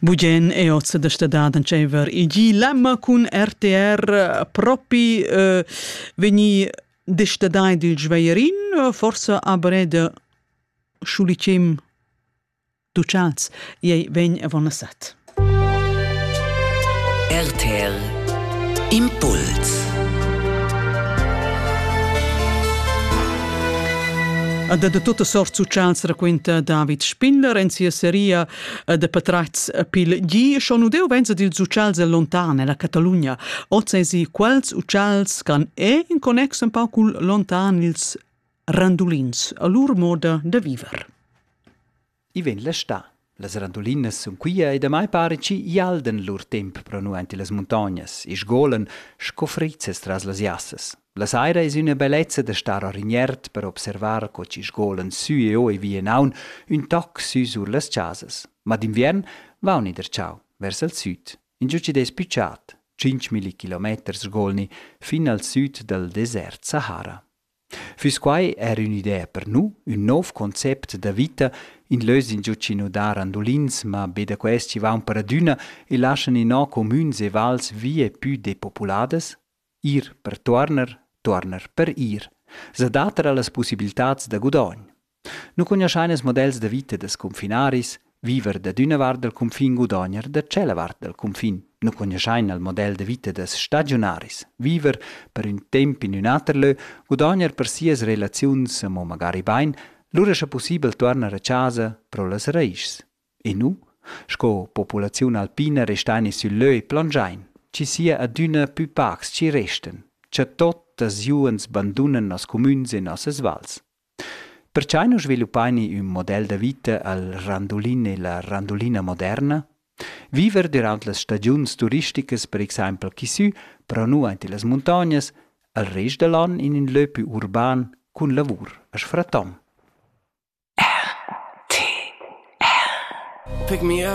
Bugen è oz da stadad entscheiver igi lemma cun RTR propi eh, vegni destadai dil Schweierin forsa a breda schulicim ducals ei vegn avon a set. RTL Impuls Ed da tutta sort socials raquinta David Spindler en sia seria eh, de patratgs pil gi. Schon udeu venza dils socials el lontan la Catalunya. Oz esi quels socials can è in connex un pau cul lontan ils randulins, a lur moda de viver. I vegn la stà. Las randulinas sun quia e damai pare chi ialdan lur temp pro nu aint illas muntognas e sgolan sco frizzas tras las jassas. La saira es üna bellezza da star a Rignert per observar co chi sgolan sü e o e via in aun ün toc sü sur las chasas. Ma d'inviern vauni der ciao vers al süd. Ingiò chi'd es pü chat, 5.000 kilometers sgolni fin al süd dal desert Sahara. Füss quai er ün'idea per nu? Ün nouv concept da vita? In lös ingio chi nu dà randulins, ma be da quels chi vaun per adüna e laschan inò comüns e vals vie pü depopuladas? Ir per tuorner, tuorner per ir. S'adatta a las pussibiltats da gudogn. Nu cugnuoschain ils models da vita da scunfinaris, viver dad üna vart dal cunfin gudogner da tschella vart dal cunfin. Nu cugnuoschain il model da vita da stagiunaris, viver per ün temp in ün ater lö, gudogner per sias relaziuns amo magari bain, lura scha pussibel tuornar a chasa pro las raischs. E nu, sco populaziun alpina restain i sül lö e plangiain, chi sia adüna pü pacs chi restan, cha tuottas juens bandunan noss cumüns e nossas vals. Perchai nu sviluppaini ün model da vita al randulin e la randulina moderna? Viver dürant las stagiuns turisticas per exaimpel chi sü, però nu aint illas muntognas, al rest da l'an in ün lö pü urban cun lavur as fraton. Pick me up